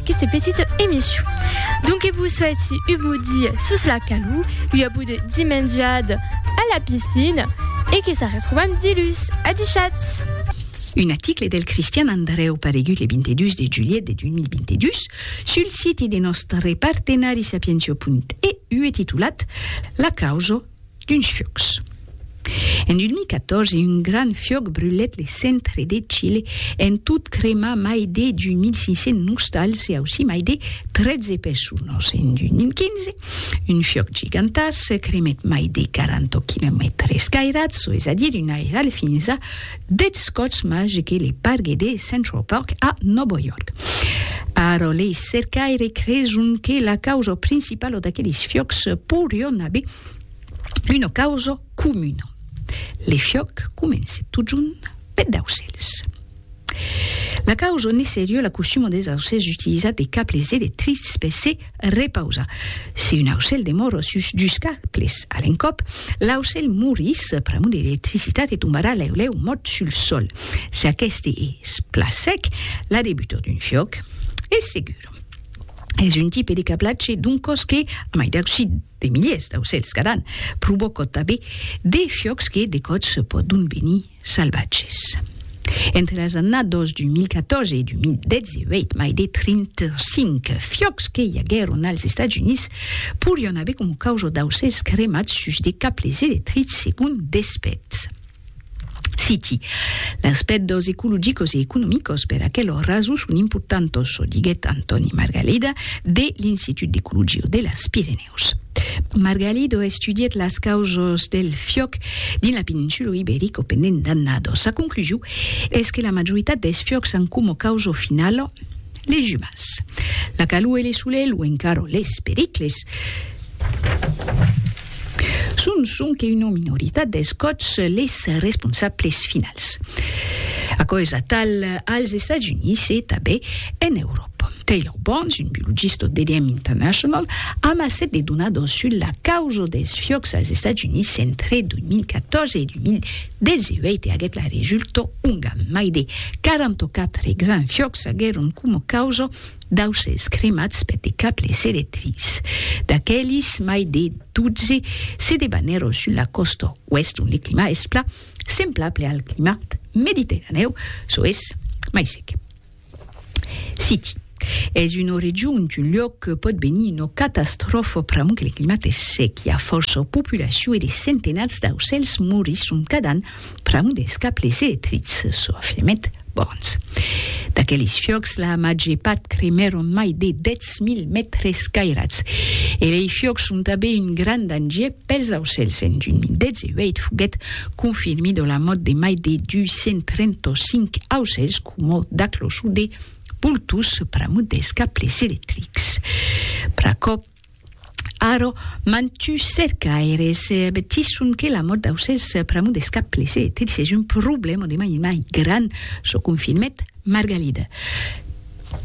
aquesta petita emission. Donc que vous souhaite un beau dia sous la calou, un beau de dimenjade à la piscine et que ça retrouve un petit lus. À du chats! Un article del Cristian Andreu paregut le 22 de julhet de 2022 sul siti de nòstre partenari sapientio.eu e titulat La causa D'uns fiòcs. En 2014, un grand fiòc brulèt le centre de Chile, en tot cremar mai de 2.500 nostals e aussí mai de 13 personas. En 2015, un fiòc gigantàs cremèt mai de 40 quilomètres cairats, çò es a dire un airal fins a Deth Scots Mage que le pargue de Central Park a Nòvo York. Ara lei cercaires creson que la causa principala d'aqueles fiòcs poirion aver una causa comuna. Le fiòc comence totjorn peth d'aucèls. La causa ne serie la costuma des aucèls d'utilizar de cables electrics per se Repausa. Si un aucèl demor o sus dus cables a l'encòp, l'aucèl morís pr'amor de l'electricitat e tombarà lèu lèu mòrt sul sòl. Si aqueste es plan sec, la debutor d'un fiòc es segur. Es un tipe de cablatge d'un còs que, a mai d'aucir de miliers d'aucèls cada an, provòca tanben de fiòcs que de còps pòdon venir salvatges. Entre las annadas 2014 e 2018, mai de 35 fiòcs que i aguèron als Estats Units porián aver coma causa d'aucèls cremats sus de cables electrics, segon d'expèrts. Citi, Las pèrdas ecologicas e economicas per aquela rason son importantas, diguèt Antòni Margalida, de l'Institut d'Ecologia de las Pirenèus. Picadors. Margalido estudièt las causas del fiòc dins la peninsula Iberica pendent d'annadas. Sa conclusion es que la majoritat dels fiòcs an coma causa finala les umans. La calor e le solelh o encara les pericles son sonque una minoritat dels còps les responsables finals. Aquò es atal als Estats Units e tanben en Euròpa. Pompei Aubons, un biologista d'EDM International, amassèt de donadors sus la causa dels fiòcs als Estats Units entre 2014 e 2018 e aguèt la resulta onga mai de 44 grands fiòcs aguèron coma causa d'aucèls cremats per de cables electrics. D'aquelis, mai de 12 se debanèron sus la còsta oèst ont le climat es plan semblable al climat mediterranèu, çò es mai sec. City. Es una region d'un luòc que pòt venir una catastròfa pr'amor que le climat es sec, i a fòrça populacion e de centenats d'aucèls morisson cada an pr'amor dels cables electrics sofrement bons. D'aqueles fiòcs, la màger part cremèron mai de 10.000 mètres cairats. E lei fiòcs son tanben un grand danger pels aucèls. En 2018 foguèt confirmida la mòrt de mai de 235 aucèls Coma da clochon de pultós pr'amor dels cables electrics. Pr'aquò, ara, mantuns cercaires avertisson que la mòrt d'aucèls pr'amor dels cables electrics es un problèma de mai en mai grand, çò confirmèt Margalida.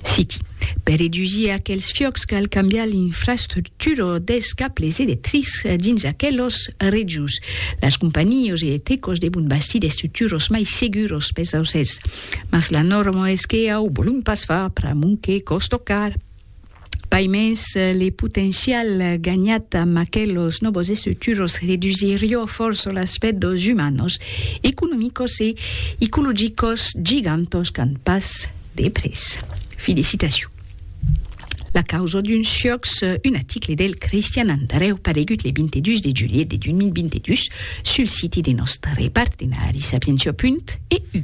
Citi, Per redusir aquels fiòcs cal cambiar l'infrastructura. turor dels cables electrics dins aquelos rejos. Las companhios electricos devon bastir d'estructuros mai seguros pels aucèls, mas la norma es que au volum pas far pr'amont que còs tocar. Paimens, le potencial ganhat amb aquelos nòvos estructuros redusirió fòrça l'aspèct dos umanos, economicos e ecologicos gigantos qu'an pas de prètz. Fi de citacion. La causa d'un siòcs, un aticle del Cristian Andreu paregut le 22 de julhet de 2022 sul siti de nòstre partenari Sapientia. Punt. Eu.